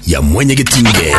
ya mwenyegetinge.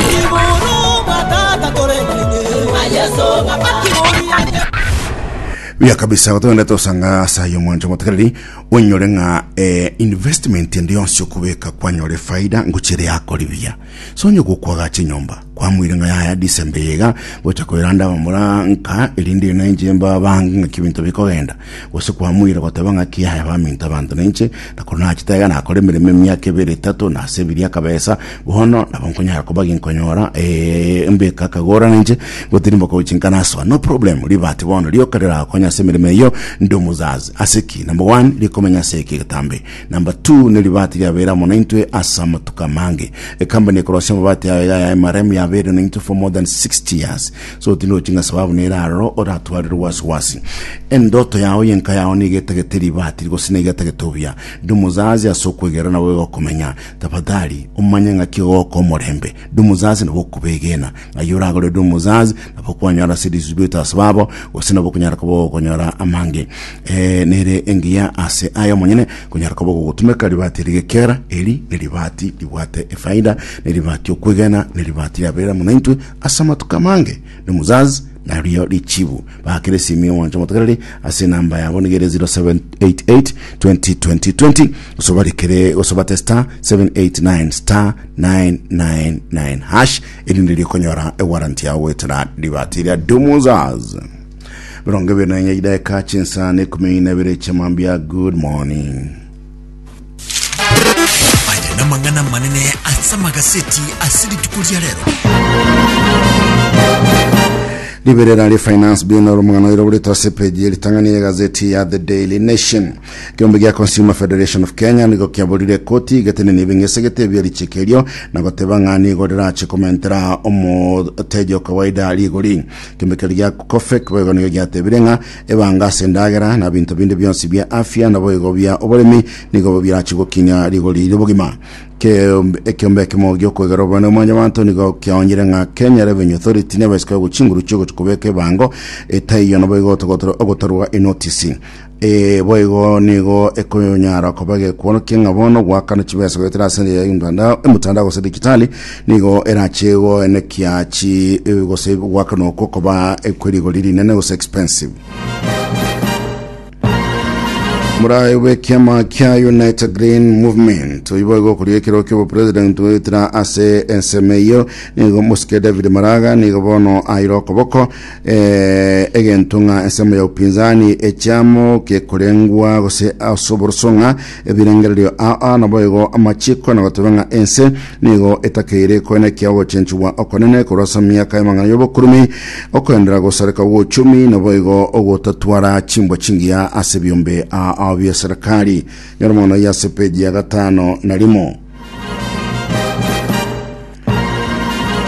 Buya kabisa gotogenda tosanga asa yo mwancho motekereri onyore ng'a eh, investment ende yonsi okobeka kwanyore faida ngochire yakori buya sonye gokwaga chinyomba kwamwire ng'a yaya disembe yega gocha koeranda bamura nka erinde nainche mba bange ng'a kibinto bikogenda gose kwamoira goteba ng'a ki aye baminto abanto nainche, na kono nachete iga nakore emeremo emiaka ebere etato, na ase ebiria akabesa, bono nabo nkonyara koba ginkonyora eh, mbeka akagora nainche, gotiri mboko gochia nkanasoa, no problem, ribati bono rioka riragokonya ase emeremo eyio, ndi omozazi, ase ki? Number one, rikomenya ase eke egetambe, number two, ne ribati riabeire amo naintwe ase amatuko amange, ecompany ekorosia amabati aye iga ya MRM yabeire naintwe for more than 60 years. So tirochi ng'a sababu nere aroro oratwarire obwasi-bwasi. Endoto yao yenka yao nigo etagete ribaati rigose nigo etagete obuya. Ndi omosaasi ase okwegena nabo iga okomenya. Tafadhali omanye ng'aki egogoka omorembe. Ndi omosaasi nabo okobegena. Ng'ai oragore ore omosaasi nabo kwanyora ase risibuete ase babo gose nabo okonyara koba ogokonyora amange. Ee, nere engiya ase aya omonyene konyara koba ogogotumeka ribaati eri gekiagera eri neribaati ribwate efaida, neribaati okwegena, neribaati riaberera amo naintwe Ase amatuko amange Dumuzaz na Rio Richibu bakire esimi y'omwancho omotogereri ase enamba yabo nigo ere 0788202020 gose barekere gose bate star 789 star 999 hash erinde rikonyora ewaranti yao goetera ribati ria Dumuzaz mirongo ebere na enye chidaeka chinsa na ekumi na ebere chiamambia good morning Aya namang'ana amanene ase amagaseti ase rituko ria rero. Liberera ri Finance Bill oro mwana iro buri tose page ye ritang'ani ya gazeti ya The Daily Nation. Kiombe gia Consumer Federation of Kenya nigo kiaborire koti igetene ni bingesegete ebia richiko erio na goteba ng'a nigo rirache komentera omoteji o kawaida rigori. Kiombe keri gia COFEC boigo nigo giatebire ng'a Ebango ase endagera na binto binde bionsi bia afya naboigo bia oboremi nigo birachi gokinya rigori ri'obogima. Keombe- Ekeombe ekemo gi'okwegera obonene bwa Mwanyabaanto nigo kiaonyeire ng'a Kenya Revenue Authority niabo esike gokwa chinguru chiogochi kobeka ebango etaiyo naboigo otogotorwa ogotorwa enotisi. Ee boigo nigo ekonyara koba gekworokia ng'a bono goakana chibesa goetera ase engeria y'omtandao emotandao gose digitali Nigo erache goenekia chi gose goakana okwo koba kwe rigori rinene gose expensive. Murayo bw'ekiama kia Unite Green Movement oibo igokoria ekero ki'obopresident goetera ase ensemo eyio nigo mosike David Maraga nigo bono aire okoboko eh, egento ng'a ensemo ya upinzani echiamo gekorengwa gose ase oborosong'a Ebirengererio aa naboigo amachiko na gotoba ng'a ense nigo etakeire koena ekia ogochenchigwa okonene korwa ase emiaka y'amang'ana y'obokurumi, okoendera gosareka gw'ochumi, naboigo ogotatwara chimbwa chingiya ase ebiombe aa bia serikali. Nyora amang'ana ayio ase page ya gatano na rimo.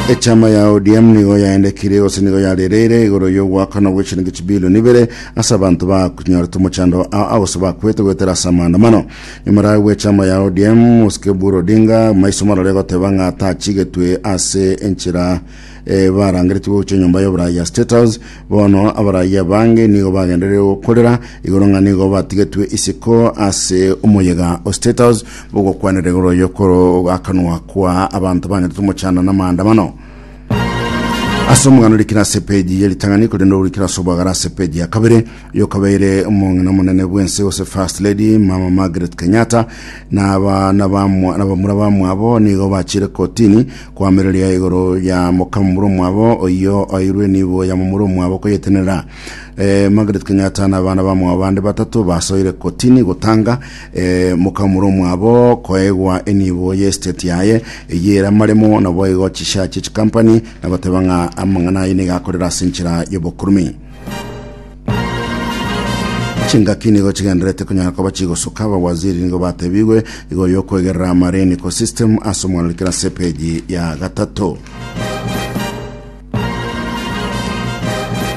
Echama ya ODM nigo yaendekire gose nigo yarereire igoro y'ogoakana gw'echiringi chibilioni ibere ase abanto bakunyorete omochando a- agose bakwete goetera ase amaandamano nyamara bw'echama ya ODM Osike Buru Odinga maiso marore goteba ng'a tachigetwe ase enchera eh, barangeretigwe gochia enyomba y'oborai ya State House bono abarai abange nigo bagendereire gokorera igoro ng'a nigo batigetwe isiko ase omoyega o State House Bogokwanera igoro oyo kore akanwa kwa abanto banyete tomochanda namaandamano. Ase omogano rikira ase peji ye ritang'ani korende orikira ase obwagara ase peji ya kabere oyo kabeire omong'ina omonene bwense ose First Lady Mama Margaret Kenyatta na abana bamwa na bamura bamwabo nigo bachire kotini koamereria igoro ya mokamura omwabo oyo oirwe nibo ya mamura omwabo koyetenera eh, Margaret Kenyatta na abana bamwabo bande batato basoire kotini gotanga Ee, mokamura omwabo koegwa enibo y'esiteti yaye, eyio ere amaremo, naboigo chisha chie chikampani, na goteba ng'a amang'ana aye nigo akorera ase enchera y'obokurumin. Chingaki nigo chigenderete konyara koba chigosoka abawaziri nigo batebigwe igoro y'okwegerera amareniko system ase omwanori kera ase epeji ya gatato.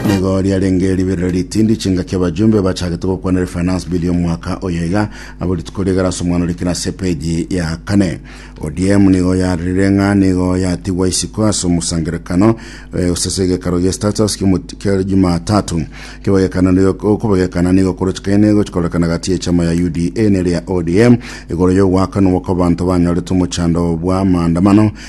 Nigo riarenge riberero ritindi chingaki abajumbe bachagete gokwana refinance bill y'omwaka oyo iga abo rituko rigara ase omwana orikire ase epeji ya kane odm nigo yarire ng'a nigo yatigwa isiko ase omosangerekano eh, ase ase egekaro gia status kiomoti- kia jumatatu kebagekana nigo- okobagekana nigo korochikaine gochikorekana gati y'echama ya uda nere ya odm igoro y'ogwakanwa kw'abanto banyorete omochando bwa maandamano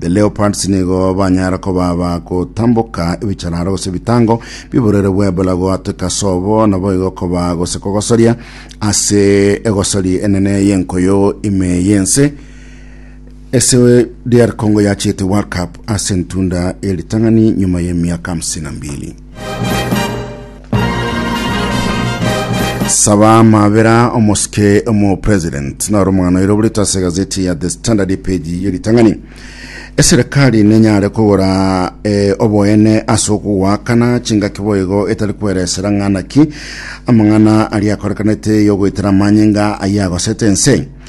The Leopards nigo banyara koba bagotamboka ebichararo gose ebitango bi'oborere bw'Ebola goateka sobo naboigo koba gose kogosoria ase egosori enene y'enkoyo ime y'ense ase DR Congo yachete World Cup ase entunda y'eritang'ani nyuma y'emiaka 52. Saba Mabera omosike omo president naro omogano ero burito ase gazeti ya The Standard page ye ritang'ani eserikali nenyare kogora eh, oboene ase okogwakana chingaki boigo etari kweresera ng'ana ki amang'ana aria akorekanete yogoitera amanyinga ayagosete ense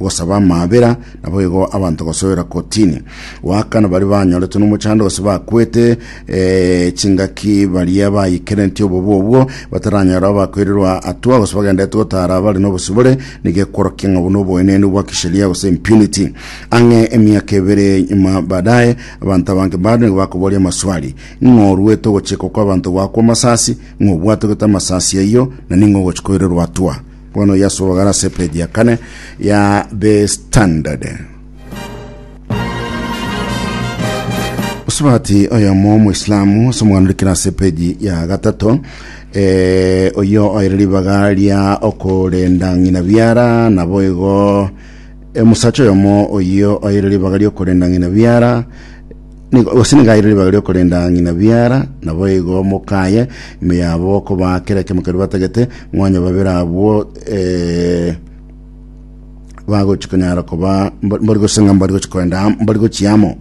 gosaba amaabera, nabo igo abanto gosoera kotini. Goaka nabari banyoretwe nomochando gose bakwete eh, chingaki baria bayekerentie obobe obwo bataranyora abakoirerwa atua gose bagenderete gotara abare nobosibore nigo ekworokia ng'a obo noboenenu bwa kisheria gose impunity. Ang'e emiaka ebere nyuma baadaye abanto abange bado nigo bakoboria amaswali ng'a oruete ogochekwa kwabanto gwakwa amasasi, ng'a obwate gete amasasi ayio na ning'o ogochi koirerwa atua. Bono yasorogara ase page ya kane ya The Standard. Osubati oyomo omoislamu ase omoganda orikire ase page ya gatato eh, oyo oire ribaga ria okorenda ng'ina biara nabo igo eh, omosacha oyomo oyo oire ribaga ria okorenda ng'ina biara Nigo- gose nigaire ribaga riokorenda ng'ina biara, naboigo mokaye ime yabo okobaa kera ekemo keria batagete, ng'onye babere abwo eh, bagochi konyara koba mba- mbari gose ng'a mbari gochi korenda am- mbari gochia amo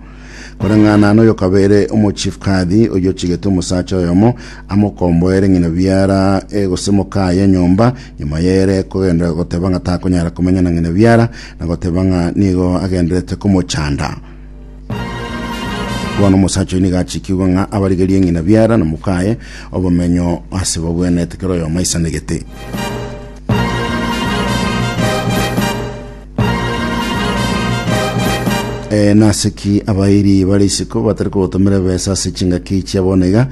koreng'ana noyo okabeire omochief kadhi oyio ochigete omosacha oyomo amo okomboere ng'ina biara eh, gose mokaye enyomba nyuma yere kogenda goteba ng'a takonyara komenya na ng'ina biara nagoteba ng'a nigo agenderete komochanda Bono omosacha oyo nigo achikigwe ng'a abarigerie ng'ina biara na mokaye obomenyo ase babwenete kera oyomo aisanegete. Eh, nase ki abairi bare isiko batari kogotomera ebesa ase chingaki chia bono iga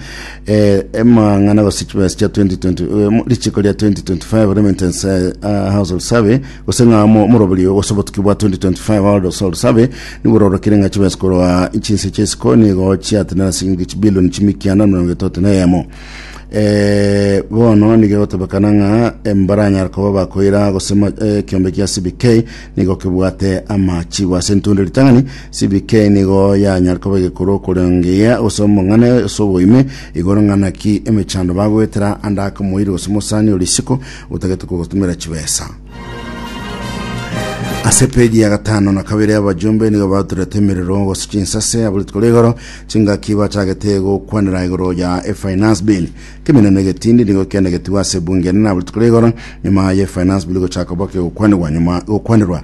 eh, emang'ana gose chibesa chia 2020 eh, mo- richiko ria 2025 remittance eh, ah, household survey Gose ng'a mo- omoroberio gose obotuki bwa 2025 World of Soul Survey nibororokire ng'a chibesa korwa chinse chia isiko nigo chiatenena silingi chibilioni chimikianda emerongo etoto na eyemo Eh, bono nigegotebekana ng'a eh, mbaranyara koba bakoira gose ma- eh, ekeombe kia cbk nigo kebwate amachigo ase entundo ritang'ani cbk nigo yanyare koba egekuru okorengeyia gose omong'ane ase oboime igoro ng'a naki emechando bagoetera ande ake omoiri gose omosani o risiko Otagete kogotumera chibesa. Ase peji ya gatano na kabere abajumbe nigo baturete emerero gose chinsase abo rituko rigoro chingaki bachagete gokwanera igoro ya efinance bill keminene egetindi nigo kianegetigwa ase bunge enene abo rituko rigoro nyuma ya efinance bill gochaka boke gokwanirwa nyuma gokwanirwa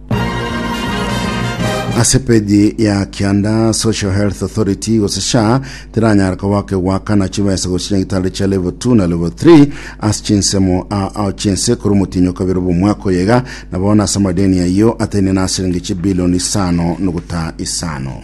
ase peji ya kianda social health authority gose sha tiranyara koba kegwakana chibesa gose chinyagitari chia level 2 na level 3 ase chinsemo a- ao chinse korwa omotinyo kabere bw'omwaka oyega na bono ase amadeni ayio ataine na asilingi chibilioni isano noguta isano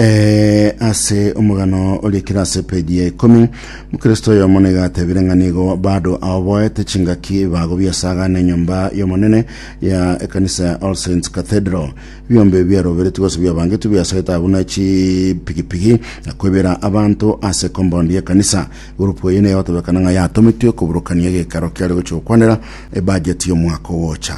Eh, ase omogano oria kera ase page ya ikomi mokristo oyomo niga atebire ng'a nigo bado aoboete chingaki bago biasagana enyomba y'omonene ya ekanisa ya all saints cathedral ebiombe biaroberetwe gose biabangetwe biasete abwo na chipigipigi na kwebera abanto ase compound y'ekanisa gurupu eye niyo egotebekana ng'a yatomitwe koburukania egekaro kiare gochia gokwanera ebajeti y'omwaka ogocha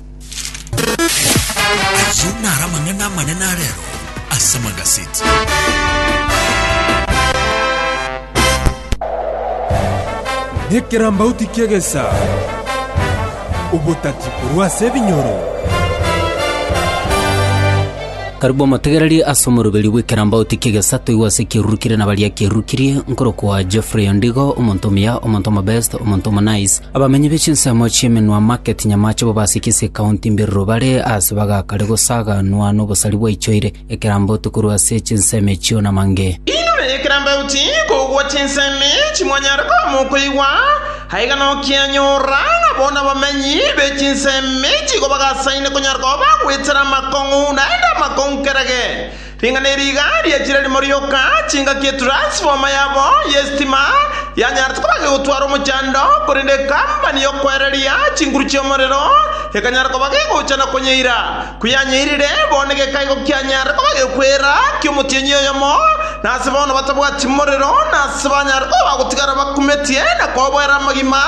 Ayio naro amang'ana amanene a rero ase magaseti. Ekerambauti ki'egesa, obotati korwa ase ebinyoro. Karibu omotegererie ase omoroberio bw'ekerambaoti ki'egesato igwa ase ekieruru kire na baria kierukirie, nkorokwa Geoffrey Ondigo, omonto omuya, omonto omobest, omonto omonice. Abamenyi be chinsemo chi'emenwa market Nyamache bo basikise ekaunti Mbiriro bare aase bagakare gosaganwa n'obosari bwaichoire ekerambaoti korwa ase chinsemo echio namange. Inwe ekerambaoti kogwa chinsemo echi mwanyare koamokoigwa, Aiga nokianyorora ng'a bono abamenyi be chinsemi chigo bagasaine konyara koba bagwetera amakong'u naende amakong'u kerage. Ring'ana eri iga riachire rimo rioka, chingaki etransfoma yabo y'esitima yanyarete koba gegotwara omochando, korende ekambani y'okoereria chinguru chi'omorero ekanyara koba gegocha na konyeira. Koyanyeirire, bono geka igo kianyare koba gekwera ki'omotienyi oyomo, na ase bono batabwati morero, na ase banyare koba bagotigara bakumetie na koboera amagima,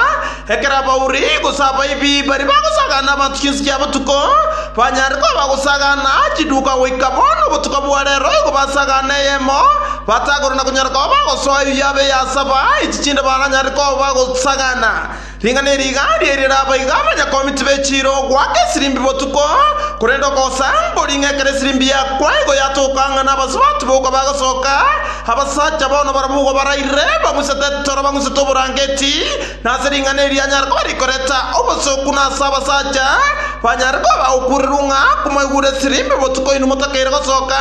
ekero abauri, gose abaibi, baria bagosagana abanto chinse chia botuko, banyare koba bagosagana chiduka goika bono obotuko bwa reero igo basagana eyemo, batagore na konyara koba bagosoa eyio yabe eyasaba, echi chinde baranyare koba bagosagana. Ring'ana eri igari eri raba iga abanyakomiti be chiira ogoaka esirimbi botuko, korende okosaamboria ng'a ekero esirimbi yakwa igo yatoka ng'a nabasubati boka bagasoka, abasacha bono barabwo igo baraire bang'usete etoro bang'usete oborangeti, na ase ring'ana eri anyare koba rikoreta obosooku na ase abasacha banyare koba bagokuurerwa ng'a komoigure esirimbi botuko inwe motakeire gosoka,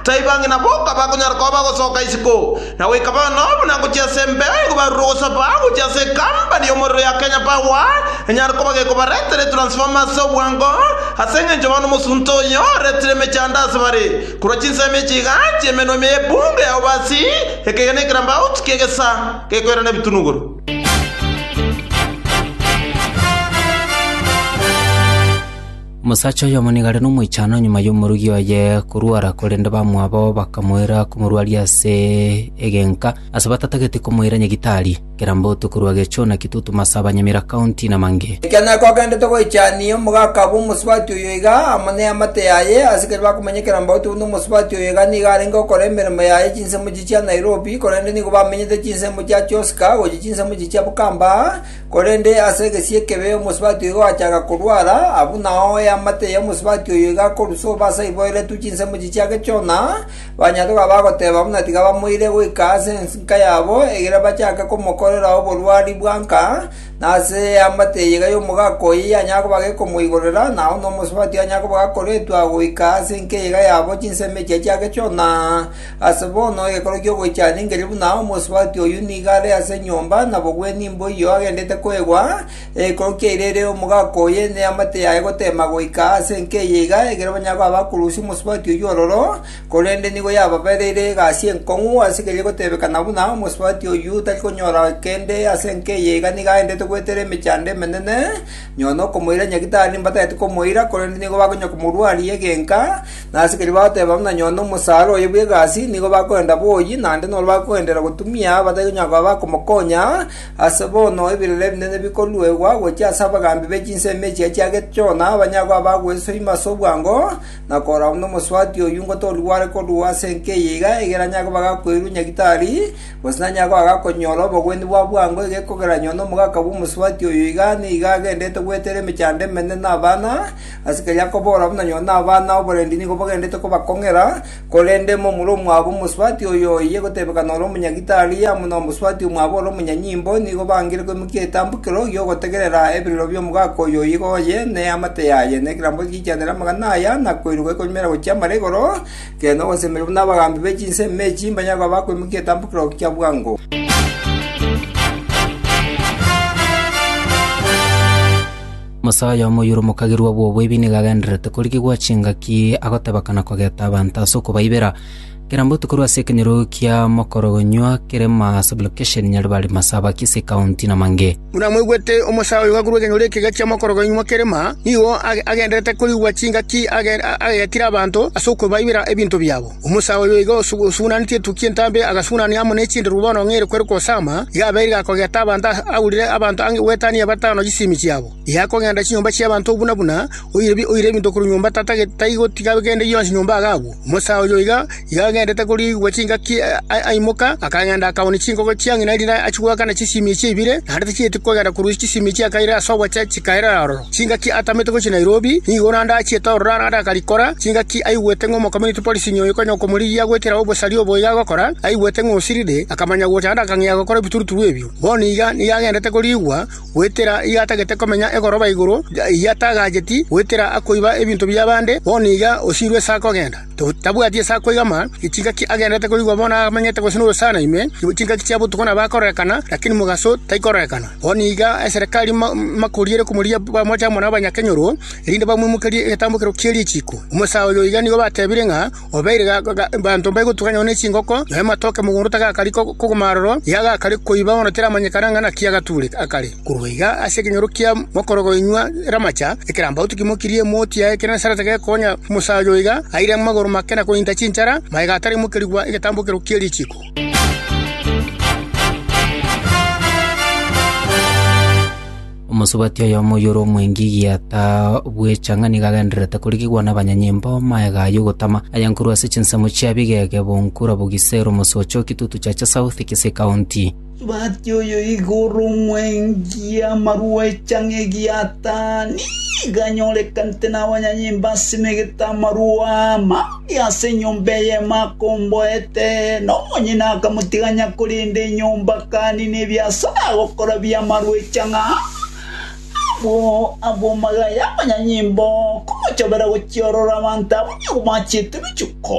taiba ng'ina boka bakonyara koba bagosoka isiko. Na goika bono buna ngochia ase embere, nigo barure ogosaba gochia ase ekampani y'omorero ya Kenya Power, enyare koba gekobaretera etransformer ase obwango, ase engencho bono omosunte oyo oretire emechando ase bare, korwa chinsemo echi iga chi'emenwa ime y'ebunga ya Obasi, ekegena ekerambauti ki'egesa gekoirana ebitunuguru. Omosacha oyomo nigo are nomoichano nyuma y'omorogi oye korwara, korende bamwabo bakamoira komorwaria ase egenka, ase batatageti komoira nyagitari. Kerambotu korwa Gechuna, Kitutu, Masaba, Nyamira County, na mangĩ. Ekiagera nako agenderete goichania omogaka abwo omosubati oyo iga, amo neamate yaye, asikari bakomanya Kerambotu buna omosubati oyo iga nigo arenge okora emeremo yaye chinsemo echi chia Nairobi, korende nigo bamenyete chinsemo chia Choska gochia chinsemo echi chia Bukamba, Korende ase egesie ekebe omosubati oyo gachaka korwara, abwo nao eamate y'omosubati oyo igakorusa obasa iboeretwe chinsemo echi chia gechona, banyaroka bagoteba buna tiga bamoire goika ase ensinka yabo, egere bachake komokorera oborwari bwa nka, na ase eamate eye iga y'omogaka oye yanyara koba gekomoigorera, na aho nomosubati onyare koba gakoretwa goika ase enka eye iga yabo chinsemo echio chia gechona. Ase bono egekero gi'ogoichana ingerie buna omosubati oyio nigo are ase enyomba, nabogwenie imbo eyio agendete koegwa, egekero kiaire ere omogaka oye neamate yaye goteema goika ase enka eye iga, ekero banyare koba bakorusia omosubati oyio ororo, korende nigo yababereire egasi enkong'u ase keria gotebekana buna omosubati oyio tari konyora kende ase enka eye iga nigo aendete goetera emechando emenene, nyuma nokomoira nyagitari mbatagete komoira, korende nigo bakonyara komorwaria egenka, Na asikari bagateba buna nyoo nomosaara oye bw'egasi nigo bakorenta boyi, naende noro bakogenderera gotumia abatari konyara koba bakomokonya, aase bono ebirore ebinene bikoruegwa gochia ase abagaambi be chinsemo echio chiagete Jona, banyare koba bagwesoima ase obwango, na korora buna omosubati oyio ngotoria gware korwa ase enka eye iga, egere anyare koba gakoirwa nyagitari, gose nanyare koba gakonyora obogwenia bwa bwango egekogeraniwa nomogaka bw'omosubati oyo iga nigo agenderete gweterera emechando emenene na abana, Asikari akobora buna nyoo nabana oborendi nigo bagenderete kobakong'era, korende momura omwabo omosubati oyo oiye gotebekana ore omonyagitari, amo nomosubati omwabo ore omonyanyimbo, nigo bangire koimokia etambukero y'ogotegerera eberero bi'omogaka oyo oigo oye, ne amate yaye, ne ekerambe gigikianera amang'ana aya, na koiroka ekonyumera gochia amara igoro, kere nogosemeria buna abagaambi be chinsemi e chiimba nyare koba bakoimokia etambukero kia bwango. Omosae oyomo oyore omokagerwa bw'oboibi nigo agendererete korigigwa chingaki agoteba kana kogeta abanto ase okobaibera. Kera mbotuko korwa ase ekenyorogo kia mokorogonywa kerema sublocation Nyaribari Masaba Kisii County na Mange. Buna mwaigwete, omosae oyomo korwa ekenyorogo ekega kia mokorogonywa kerema nigo agendererete korigigwa chingaki agetire abanto ase okobaibera ebinto biabo. Omosae oyo iga osugunanetie etukia entambe agasugunania amo ne chinderu bono ng'a ere kwere kosama, iga abeire gakogeta abanto aurire abanto ang'e gwetania batano chisemi chiabo. Iga akogenda chinyomba chi'abanto buna buna, oire ebinto korwa nyomba taigotiga gende gionsi nyomba iga agwo. Omosae oyo iga agendete koriigwa chingaki aimoka, akagenda akaoonia chinkoko chia ng'ina erinde achie goakana chisemi echi ibire, naende tichieti kogenda korwa chisemi echi akaire ase obochia chikairera aroro. Chingaki atamete gochia Nairobi, nigo naende achiete ororo arare akarikora. Chingaki aigwete ng'a Omocommunity Policing oyo konya okomorigia gwekera obosaria obo iga agokora, aigwete ng'a osirire, akamanya gocha naende akang'ea gokora ebituruturu ebio. Bono iga nigo agendete koriigwa, goetera iga atagete komenya egoroba igoro, iga atagacheti, goetera akoiba ebinto bi'abande, bono iga osirwe ase akogenda. Tabwati ase akoigama, chingaki agenderete korigwa bono amenyete gose noyo sana ime, chingaki chia botuko nabo akororekana, lakini mogaso taikororekana. Bono nigo eserekari makoriere komorigia bamoche amo nabanyakenyoro, erinde bamoimokerie egetambokero kie richiiko. Omosae oyo iga nigo batebire ng'a obeire banto mbaigotugana nonya nechingoko, nonya amatoke mogondo tagakari kogoma aroro, iga gakare koiba bono tiramanyekana ng'a naki agatuure akare. Korwa iga ase ekenyoro kia mokoro goinwa eramacha, ekerambaotu kimokirie emoti ya Egenesarete gekonya omosacha oyo oiga aire amagoro make na kointa chinchara, magega ataraimokerigwa egetambokero kie richiko. Omosubati oyomo oyore omwengi egiata bw'echang'ani iga agendererete korigigwa nabanyanyimbo magega ayio gotama ayankuru ase chinsemo chia bigege, bonkura, bogisero, mosocho, kitutu, chacha south, kisii county. Tobwati oyo igoro omwengi amarua echang'a egiatani, nigo anyorekanete nabanyanyimbe asemegete amarua amange ase enyomba eyemo akomboa eteene. Omonyene akamotiga ang'e akorenda enyomba akanina ebiasara agokora bi'amarua echang'a abwo abw'amagaya y'abanyanyimbe, okomochobera gochiorora abanto abwo nigo bachiete ebichuko.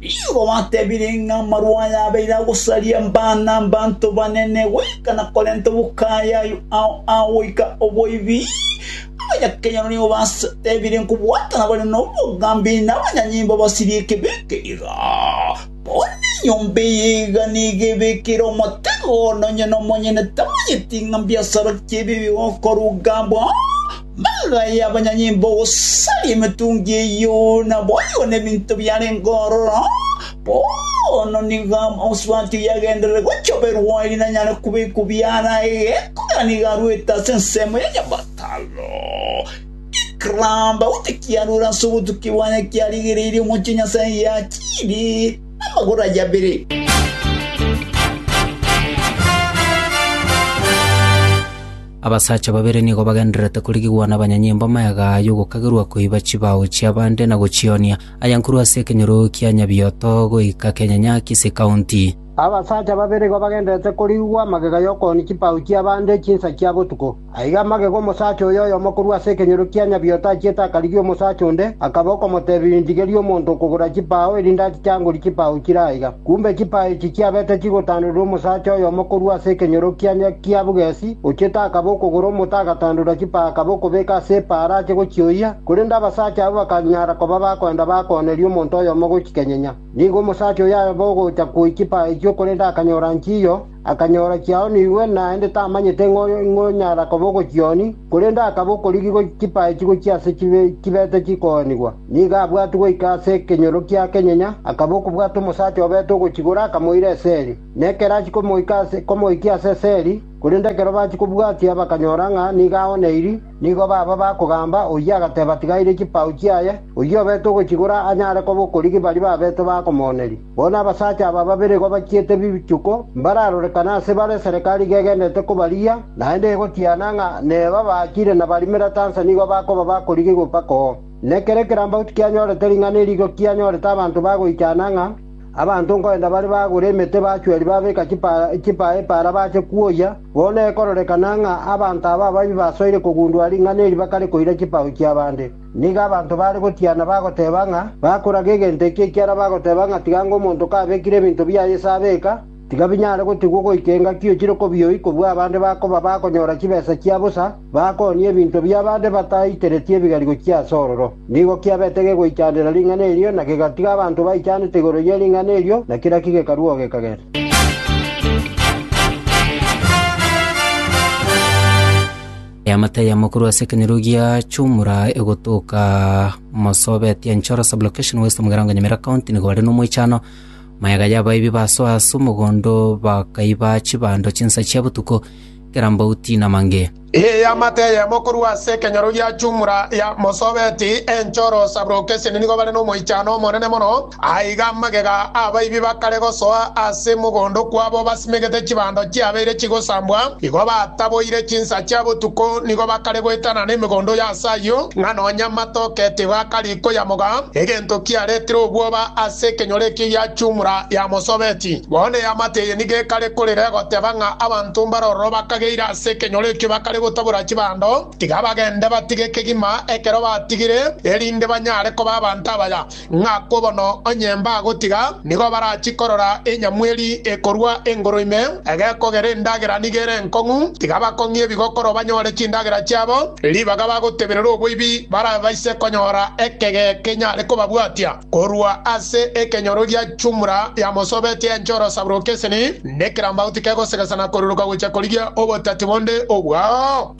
Nigo gwatebire ng'a amarwa aya abeire agosaria mbaa na abanto banene goika na korenta obokayayu ao agoika oboibi. Abanyakenyoro nigo batebire nkobwata nabare nobogambi na abanyanyimbo basirie ekebi eke iga. Bono enyomba eye iga nigo ebekire omotego, nonye nomonyene tamanyeti ng'a mbiasara ki ebibe gokorwa gambwa. Mambia aya y'abanyanyimbo gosaria emetungi eyio naboigo nebinto biarenge ororo, bono nigo omosubati oyagenderere gochia oberwa ere nanyare kobekwa biara ege, ekogera nigo arwete ase ensemo ya nyabataro, ekeramba gose kiarure ase obotukia bwaye kiarigereirie omochie Nyasae giachiiri namagoro aye abere. Abasacha babere nigo bagendererete korigigwa nabanyanyimbo amagega aya ogokagerwa koiba chibao chi'abande na gochionia, aya nkorwa ase ekenyorogo kia Nyabioto goika kenyanya Kisii County. Abasacha babere igo bagendererete korigigwa amagega y'okoonia chibao chi'abande chinsa chia botuko. Aiga amagega omosacha oyo oyomo korwa ase ekenyorogo kia Nyabioto achiete akarigia omosacha onde, akaba okomoteebia, Inchigeria omonto okogora chibao, erinde achichangori chibao chire aiga. Kumbe chipaa echi chiabete chigotandorirwa omosacha oyomo korwa ase ekenyorokiania kia bogesi, ochiete akaba okogora omote agatandora chipaa akaba okobeka ase epaara ache gochioyia, korende abasacha abwo bakanyara koba bakoenda bakooneria omonto oyomo gochikenyinya. Nigo omosacha oyo abe ogocha koyia chipaa echio korende akanyora nchiyo, Akanyora chiaonigwe, naende tamanyete ng'a oyo ing'o onyara koba ogochioni, korende akaba okorigigwa chipae chigochia ase chibe chibete chikoonigwa. Nigo abwatwe goika ase ekenyoro kia kenyenya, akaba okobwata omosacha obete ogochigora akamoira eseri. Na ekero achia komoika ase komoikia ase eseri, korende ekero bachia kobwatia bakanyora ng'a nigo aoneiri, nigo baba bakogamba, oyio agateba tigaire chipau chiaye, oyio obete ogochigora anyare koba okorigi baria babete bakomooneria. Bono abasacha aba babere igo bachiete bichuko mbararorekane ase bare esereka ariga egendererete kobarigia, naende egotiana ng'a neba abaachire na barimera tansa nigo bakoba bakorigigwa mpaka oo. Ne kera ekerambauti kianyorete ring'ana eri igo kianyorete abanto bagoichana ng'a abanto nkoenda bare bagure emete bachweri babeka chipaa epaara bache kwoyia, bono ekororekana ng'a abanto aba ababi basoire kogundua ring'ana eri bakare koira chipao chi'abande. Nigo abanto baare gotiana bagoteeba ng'a bakoraga egento eke ekiagera bagoteeba ng'a tiganga omonto kabekire ebinto biaye ase abeka, tiga binyare gotigwa goika engaki ochire kobioyi kobua abande bakoba bakonyora chibesa chia bosa bakoonie ebinto bi'abande bataitereti ebigarigo chia ase ororo. Nigo kiabete gegoichanera ring'ana erio na gegatiga abanto baichanete igoro ye ring'ana erio na kera ki gekarua oo gekagenda. Eamate ya mokuru ase ekenyoro gia Chumura egotoka Mosobet ya Nchoro sublocation west omogera wa Nyamira county nigo bare nomoichano maega y'abaibi basoa ase omogondo bakaiba chibando chinsa chia botuko kerambauti na mange. Eamate ya mokuru ase ekenyoro gia Chumura ya Mosobet Enchoro sublocation nigo bare nomoichano omonene mono Aiga amagega abaibi bakare gosoa ase mogondo kwabo basimegete chibando chiabeire chigosambwa, igo bataboire chinsa chia botuko, nigo bakare goetana nemegondo ya ase ayio, ng'a nonya amatoke tigo akari koyamoga, egento kiaretire obwoba ase ekenyoro ekio giachumura yamosobeti. Bono eamate eye nigo ekare korera egoteba ng'a abanto mbare ororo bakageire ase ekenyoro ekio bakare gotabora chibando, tiga bagende batige kegima ekero batigire, erinde banyare koba abanto abaya. ng'a kobono onye mbagotiga, nigo barachie korora enyamweri ekorua engoro ime, egekogera endagera nigo ere enkong'u, tiga bakong'ie ebigokoro banyore chindagera chiabo, ribaga bagoteberera oboibi barabaise konyora ekege kenyare kobabwatia korua ase ekenyoro gia chumura yamosobetie enche orosaburo okeseni, nekerambauti kegosegesana koruruka gochia korigia obotati bonde obwao.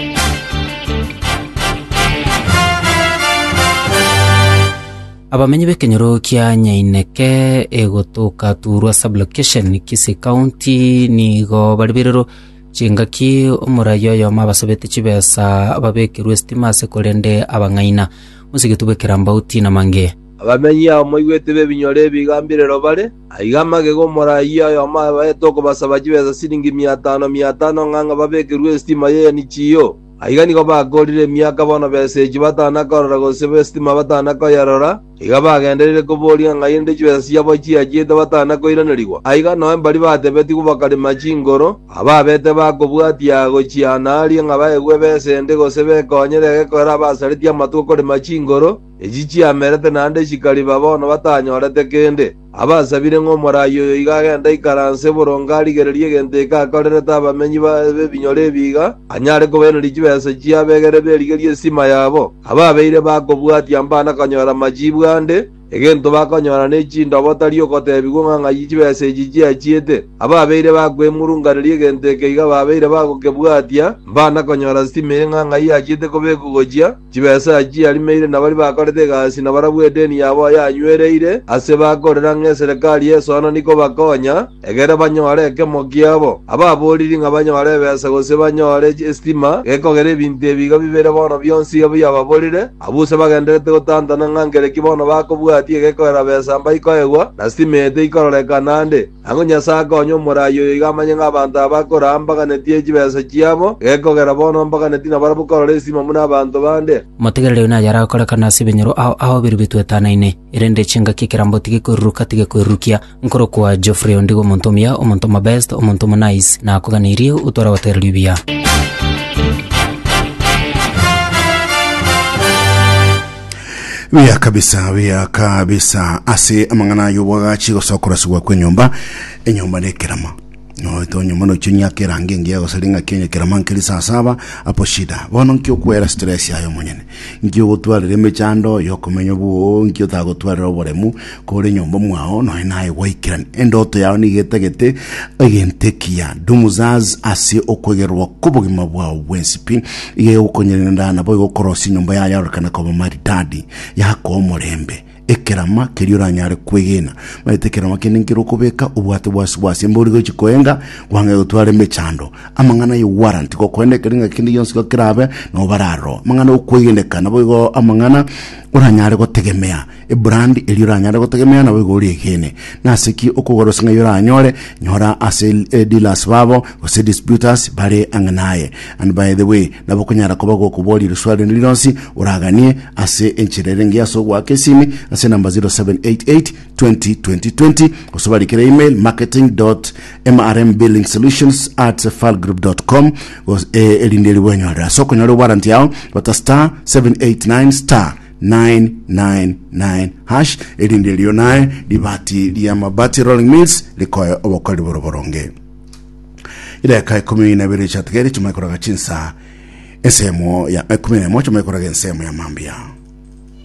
Abamenyi b'ekenyoro kia Nyaineke egotoka Turwa Sub-Location, Kisii County, nigo baribererwe chingaki omoraia oyomo abasabete chibesa babekerwe esitima ase korende abang'aina. Mosigiti bwe Kirambau Tina Mange. Abamenyi abo moigwete b'ebinyoro ebi iga mbirero bare, aiga magega omoraia oyomo abaete okobasaba chibesa siringi mia tano, mia tano ng'a ng'a babekerwe esitima y'Enichiyo. Aiga nigo bakoorire emiaka bono b'esegi batana korora gose b'esitima batana koyerora, iga bagendereire kobooria ng'a inde chibesa chiabo chiachiete batana koiranerigwa. Aiga noe mbari batebetigwe bakarema chingoro, ababete bakobwatia gochiaana aaria ng'a baegwe ebesa ende gose bekonyere egekorero abasaretie amatuko korema chingoro, echi chiamerete naende chikariba bono batanyorete kende. Abasabire ng'a omoraai oyo iga agende aikaranse boronge arigererie egento eke akorerete abamenyi b'ebinyore ebi iga anyare kobairaneria chibesa chi'abegere berigerie estima yabo, ababeire bakobwatia mbana konyora machiibu ande, egento bakonyora ne chindobo tari ogotebigwa ng'a ng'ai chibesa echi chiachiete. Ababeire bakwemurunganeria egento eke iga babeire bagokebwatia mbana konyora stima eye ng'a ng'ai yachiete kobekwa gochia, Chibesa echi arimeire nabaria bakorete egasi na barabwo edeni yabo yanywereire ase bakorera ng'a eserekari y'esoano nikobakonya, egere banyore ekemo kiabo. Ababoriri ng'a banyore ebesa gose banyore esitima gekogera ebinto ebi iga bibere bono bionsi iga biababorire, abwo use bagendererete gotantana ng'a nkere ki bono bakobwatia egekogera besa mbaikoegwa, na sitima eye teikororekana ande. Ang'o Nyasae akonye omoraai oyo iga amanye ng'a abanto aba akoraa mbaganetie chibesa chiabo, gekogera bono mbaganetie nabarabwo korora esimo buna abanto bande? Motegerere oyo naye arakorekane ase ebinyoro ao ao ebiru bitoetanaine, erende chingaki ekerambe otige koiruruka tige koirurukia. Nkorokwa Geoffrey ondigo omonto omuya, omonto omobest, omonto omonice, nakoganeirie otware gotegererwa ebiya. Biya kabisa, biya kabisa. Ase amang'ana ay'obwagachi gosa okorasigwa kw'enyomba, enyomba na ekerama. Noete onyomba nochio nyaka erange engiya gosa ring'aki onye kerama nkeri saa saba apo shida. Bono nki okwera stress yaye omonyene? Nki ogotwarera emechando yokomenya obwoo? Nki otagotwarera oboremu? Kore nyomba mwao nonya naye gwaikera endoto yao nigo etagete egento ekiya dumuzaz ase okwegererwa kobogima bwao bwensi pi iga egokonyerenda nabo igokorosia nyomba yayo yarorekane koba maridadi yakoa omorembe ekerama keria oranyare kwegena maete ekerama kende nkero okobeka obwate bwasi bwase embe ori gochi koenga gwang'e gotwara emechando amang'ana ya warrant gokoenda ekero ng'a kende gionsi igo kerabe nabo bararo amang'ana okwegeneka nabo igo amang'ana oranyare gotegemea Ebrandi eria oranyare gotegemea naboigo ore egeene. Nase ki okogora ase ng'a eyo oranyore? Nyora ase eh, dealers babo gose distributors bare ang'e naye. And by the way, nabo okonyara koba gokoboria eriswali rinde rironsi oraganie ase enchera ere engiya ase ogoaka esimi ase enamba 0788 20 20 20 gose obarikere email marketing mrmbillingsolutions at falgroup.com gose eh, erinde ribu enyorere ase okonyora ewaranti yao bata star 789 star 999#, erinde erio naye ribati ria mabati rolling mills rikoe obokori boro boronge. Idakika ikomi na ibere chiatigere chimanye koraga chinsa ensemo ya ikomi na emo chimanye koraga ensemo ya mambia.